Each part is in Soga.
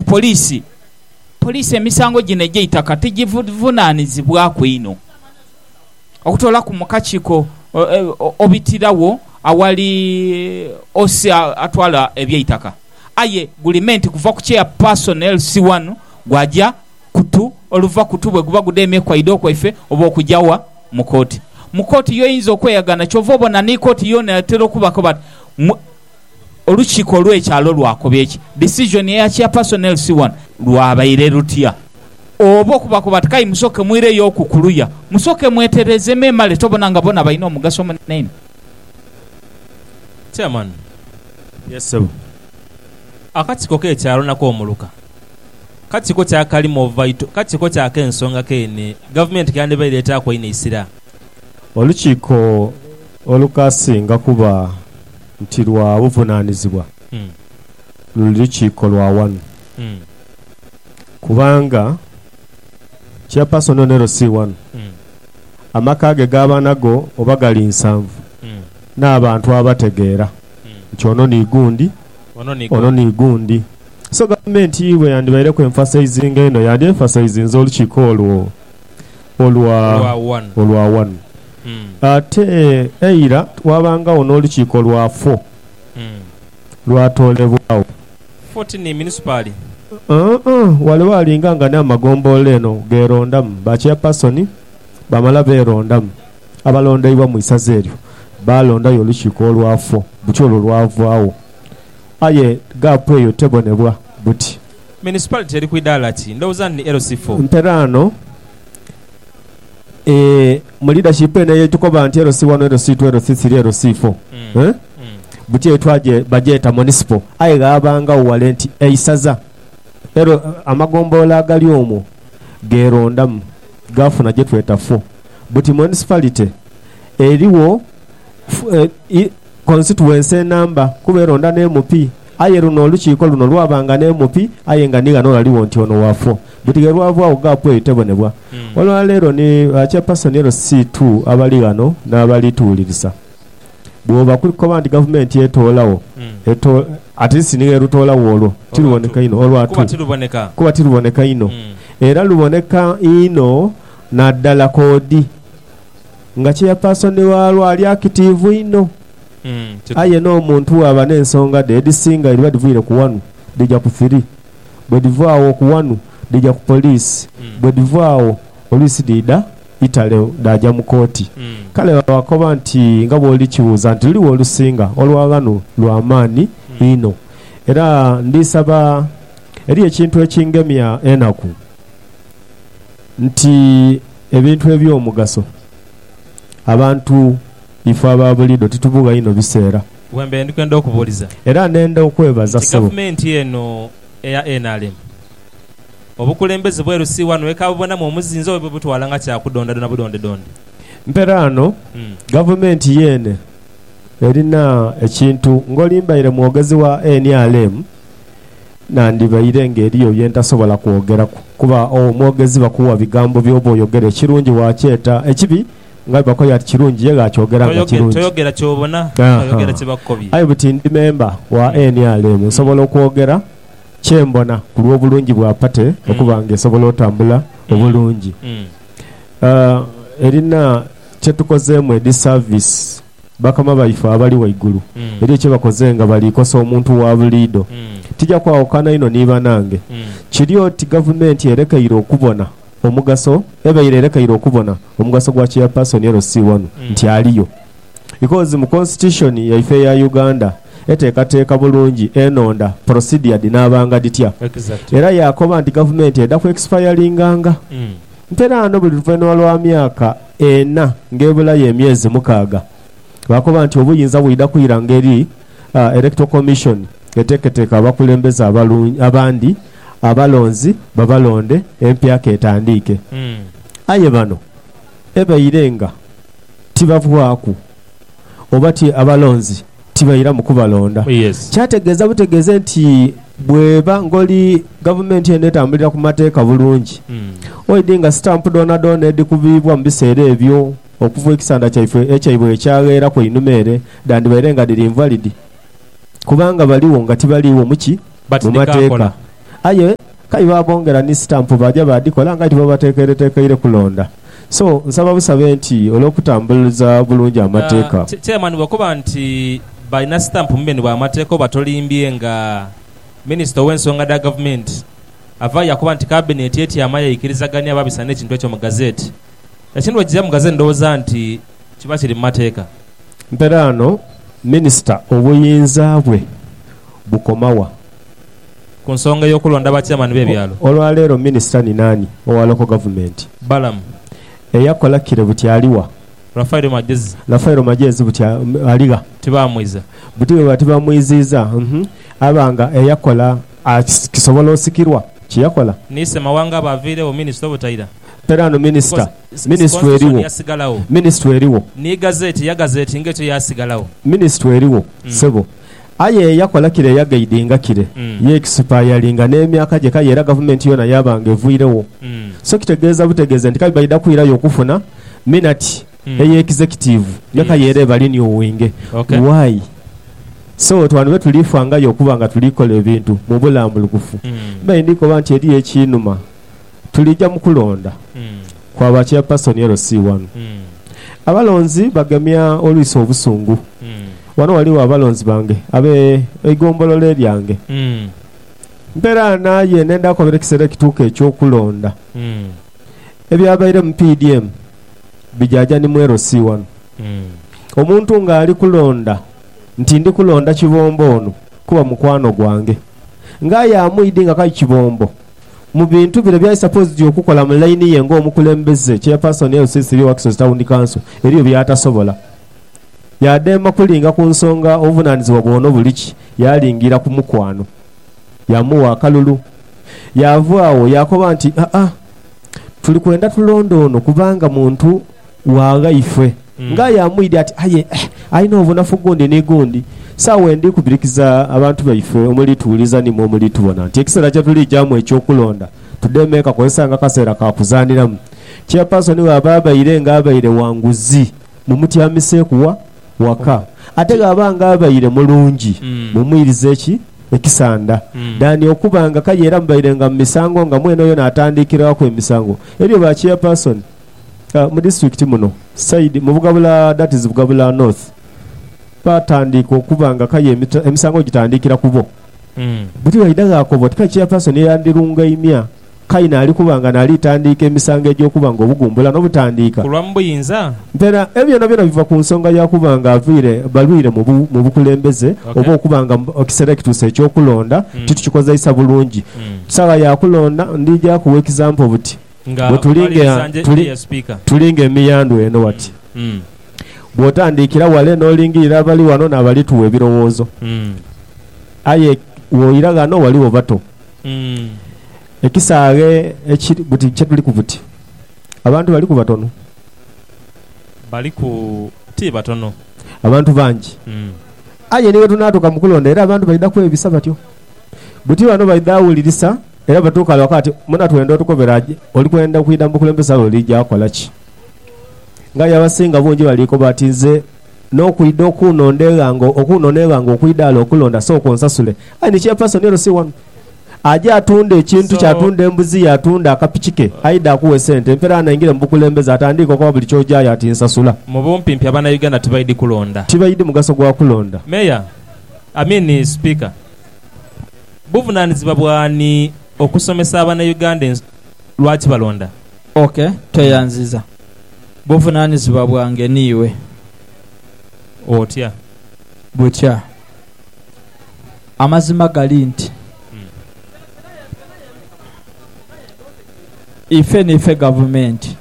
Poliisi Poliisi emisango gino egy'eitaka tigivunaanizibwaku inho okutoolaku mu kakiiko obitiragho awali OC atwala eby'eitaka aye gulimenti kuva ku Chairperson LC wanu gwaja kutu oluva kutu bweguba gudemye kwaido kwaife oba okuja wa? mu kooti. Mu kooti y'oyinza okweyagana kyova obona ni kooti yoona etera okubako bati, Olukiiko olw'ekyalo lwakoba eki disizoni eya Chairperson LC wano lwabaire lutya. Oba okubakoba ti kayi musooke mwireyo oku kuluya, musooke mwetereeze memale tobona nga bona balina omugaso omunene inho. Chairman, Yes ssebo. Akakiiko k'ekyalo nako muluka. Kakiiko kya kali more vital, kakiiko kya k'ensonga keene gavumenti kyandibaire etaaku einho eisira. Olukiiko olukasinga kuba. nti lwa buvunaanizibwa luli lukiiko lwa ghanu kubanga Chairperson Onero si ghano, amaka ge g'abaana go oba gali nsanvu n'abantu abategeera nti ono ni gundi, ono ni gundi. So Gavumenti bwe yandibaireku emphasizinga eno, yandi emphasizinze olukiiko olwo. olwa wanu. olwa wanu. Ate eira waabangagho n'olukiiko lwa fo, lwatoolebwagho. Fo ti ni munisipaali? Uh-uh. Wale waalinga nga ni amagombolola eno gheerondamu ba Chairpersoni, baamala beerondamu abalondeibwa mu isaza eryo, baalondayo olukiiko olwa fo, buti olwo lwavaagho. Aye gaapu eyo tebonebwa buti. Municipality eri ku idaala ki? Ndhowooza nti ni LC four. Nteraano, Eeh mu leadership eno eyetukoba nti LC one, LC two, LC three, LC four eeh buti eyo twaje bagyeta Municipal aye ghabangagho wale nti eisaza L amagombolola agali omwo gerondamu gafuna gyetweta four buti Municipality erigho eeh constituency enamba kuba eronda ne MP. Aye luno olukiiko luno lwabanga n'emupi, aye nga ni ghano ghaligho nti ono waafo. Buti ghe lwavwagho ggaapu eyo tebonebwa. Olwa leero ni ba Chairpersoni LC ii abali ghano n'abali tuwulirisa. Bw'oba kuli kukoba nti gavumenti etoolagho, eto. At least ni ghe lutoolagho olwo tiruboneka inho, olwa tu, kuba tiruboneka inho. Era luboneka inho naddala koodi. nga cheyapaasoni waalwo ali akitiivu inho. Aye n'omuntu bw'aba n'ensonga dhe edhisinga edhiba dhivwire ku wanu, dhija ku thiri. Bwe dhiva agho ku wanu, dhija ku poliisi. Bwe dhiva agho, oluisi dhiidha itale dhaaja mu kooti. Kale babakoba nti, Nga bw'oli kibuuza nti, Luliwa olusinga olwa ghano lwa maani inho? Era ndisaba eri ekintu ekingemya enaku. nti ebintu eby'omugaso abantu ife aba buliidho titubugha inho biseera. Wembeire ndi kwenda okubuuliza. Era nenda okwebaza ssebo. Nti gavumenti eno eya nrm obukulembeze bweru si wano eka bubonamu omuzinzi oba bwebutwala nga kya kudondadonda budondedonde? Mperaano gavumenti yeene erina ekintu ng'olimbaire mwogezi wa nrm. nandibaire nga eriyo bye ntasobola kwogeraku, kuba owo omwogezi bakuwa bigambo by'oba oyogera ekirungi waakyeta ekibi, nga bwe bakoyo ati kirungi ye gh'akyogera nga kirungi. Toyogera ky'obona, oyogera kye bakukobye. Aye buti ndi memba wa NRM, nsobola okwogera kye mbona ku lw'obulungi bwa pate okuba nga esobola otambula obulungi. Erina kye tukozeemu edhi saavisi. Bakama baife abali ghaigulu eriyo kye bakoze nga bali kosa omuntu wa buliidho. Tija kwawukana inho ni banange. Kiri oti Gavumenti erekeire okubona omugaso, ebaire erekeire okubona omugaso gwa Chairperson LC wano nti aliyo. Because mu Constitution yaife eya Uganda eteekateeka bulungi enonda, procedure dhinaabanga dhitya. Era yaakoba nti Gavumenti eda ku expiringanga. Mperaano buli luvainhuma lwa myaka. ena ng'ebulayo emyezi mukaaga. Baakoba nti obuyinza bwidha kwira ngeri Electoral Commission eteeketeeka abakulembeze abalungi abandi abalonzi babalonde empya k'etandiike. Aye bano ebaire nga tibavwaku oba ti abalonzi tibairamu kubalonda. Kyategeeza butegeeze nti bweba ngoli gavumenti eno etambulira ku mateeka bulungi, oidi nga sitampu dhoonadhoona edhikubiibwa mu biseera ebyo okuva ekisanda kyaife ekyaibwe wekyagheera ku einhuma ere dhandibaire nga dhiri invalid. kubanga baligho nga tibaliigho mu ki? Mu Mateeka. Batidhikaakola. Aye k'aye baabongera ni sitampu baaja baadhikola nga aye tibabateekeireteekeire kulonda. So, nsaba busabe nti olw'okutambuliza obulungi Amateeka. Ah, Chairman, bw'okoba nti balina sitampu mu beni bwa Mateeka oba tolimbye nga Minisita ow'ensonga dha Gavumenti avaayo yakoba nti Kabineeti etyama yaikirizaganhia baabisa n'ekintu ekyo mu Gazette. Ekintu bwe kiija mu Gazette ndhowooza nti. Kiba kiri mu mateeka. Mperaano Minisita obuyinza bwe bukoma wa? Ku nsonga ey'okulonda ba Chairman b'ebyalo. Olwaleero Minisita ni naani owa Local Government? Balaam. Eyakola kire buti ali wa? Raphael Magyezi. Raphael Magyezi buti ali gha? Tibaamwiza. Buti bwebaba tibamwiziiza, aba nga eyakola akisobola osikirwa kye yakola? Ni Ssemawanga aba aviiregho Minisita obutaira. Mperaano Minisita Minisitule eriwo. Minisitule eriwo. Ni gazeti ya gazeti nga etyo yasigalagho. Minisitule eriwo, ssebo. Aye eyakola kire yagaidinga kire, yeekisipayalinga n'emyaka gye kale era gavumenti yoona yaaba nga evwiregho. So kitegeeza butegeeze nti kale baidha kwirayo okufuna minati eya ekizekitiivu nga kale era eba liniuwinge. Why? So oti wano be tuli fangayo okuba nga tuli kola ebintu mu bulambulukufu. Mbaire ndi koba nti eriyo ekinuma. Tulija mu kulonda kwa ba Chairperson LC wano. Abalonzi bagemya olwiso obusungu. Wano waliwo abalonzi bange abe eigombolola eryange. Mperaana aye nenda kobera ekisera ekituuka ekyo kulonda. Ebyabaire mu PDM bijaja ni mu LC wano. Omuntu nga ali kulonda nti ndi kulonda Kibombo ono kuba mukwano gwange. Nga aye amuidi nga kai Kibombo. Mu bintu bino byali supposed okukola mu line ye nga omukulembeze, chairperson ya LC Three Waxos Town Council, eriyo byatasobola. Yadema kulinga ku nsonga obuvunanizibwa bwono buliki, yalingira ku mukwano. Yamuwa akalulu. Yava agho yakoba nti, Haa, tuli kwenda tulonde ono kubanga muntu. Wangaife. Nga aye amwidhi ati, Aye alina obunafu gundi ni gundi. Saagho wendi kubirikiza abantu baife omuli tuwuliza ni mwe omuli tubona nti ekiseera kye tulijamu eky'okulonda tudheeme kakozesa nga kaseera ka kuzaaniramu. Chairperson bw'aba abaire nga abaire wa nguzi mumutyamiseeku wa waka. Ate bw'aba nga abaire mulungi mumwirize ki ekisanda than okuba nga kale era mubaire nga mu misango nga mwene oyo naatandikiraku emisango. Ebyo ba Chairperson. mu disiturikiti muno side mu Bugabula that is Bugabula North batandiika okuba nga kaya emisango gitandikira kubo buti bwaidha ghakoba oti kale chairperson eyandhirungaimia kale naali kuba nga naali tandiika emisango egy'okuba nga obugumbula n'obutandiika Kulwamu buyinza? Ntera ebyo byonabyona biva ku nsonga ya kuba nga avaire balwire mu mu bukulembeze Okay. oba okuba nga ekisera ekituuse eky'okulonda titukikozeisa bulungi saagha ya kulonda ndija kugha example buti Bwe tuli nga tuli, tuli nga emiyandhu eno wati, bw'otandiikira wale n'olingirira abali wano n'abali tugha ebirowoozo, aye woira ghano ghaligho bato. Ekisaaghe ekiri buti kye tuliku buti, abantu baliku batono. Baliku, ti batono. Abantu bangi. Aye ni bwe tunaatuka mu kulonda era abantu baidha kwebisa batyo. Buti bano baidha awulirisa era batuuka ghale ghakati muna twenda otukobera je oli kwenda kwidha mu bukulembeze aye olija kola ki? Ng'aye abasinga bungi balikoba ati nze n'okwidha okunonda eghanga okunona eghanga okwidha ghale okulonda sooka onsasule. Aye ni chairperson eno si wanu. Aja atunda ekintu kye, atunda embuzi ye, atunda akapiki ke aidhe akuwe sente empera ghano aingire mu bukulembeze atandiike okoba buli ky'ojayo ati nsasula. Mu bumpimpi Abanauganda tibaidhi kulonda. Tibaidhi mugaso gwa kulonda. Mayor. I mean speaker buvunanizibwa bwani okusomesa abana Uganda ensonga lwaki balonda? Ok tweyanziza. Buvunanizibwa bwange niiwe. Otya? Butya? Amazima gali nti ife niife gavumenti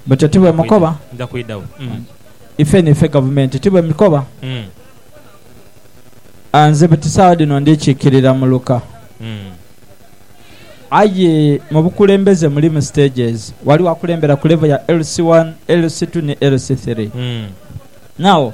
butyo tibwemukoba? Ife niife gavumenti tibwemikoba? Ah, nze buti saagha dhino ndi kikirira mu luka. Aye mu bukulembeze mulimu stages. Ghaligho akulembera ku level ya LC1, LC2 ni LC3. Now,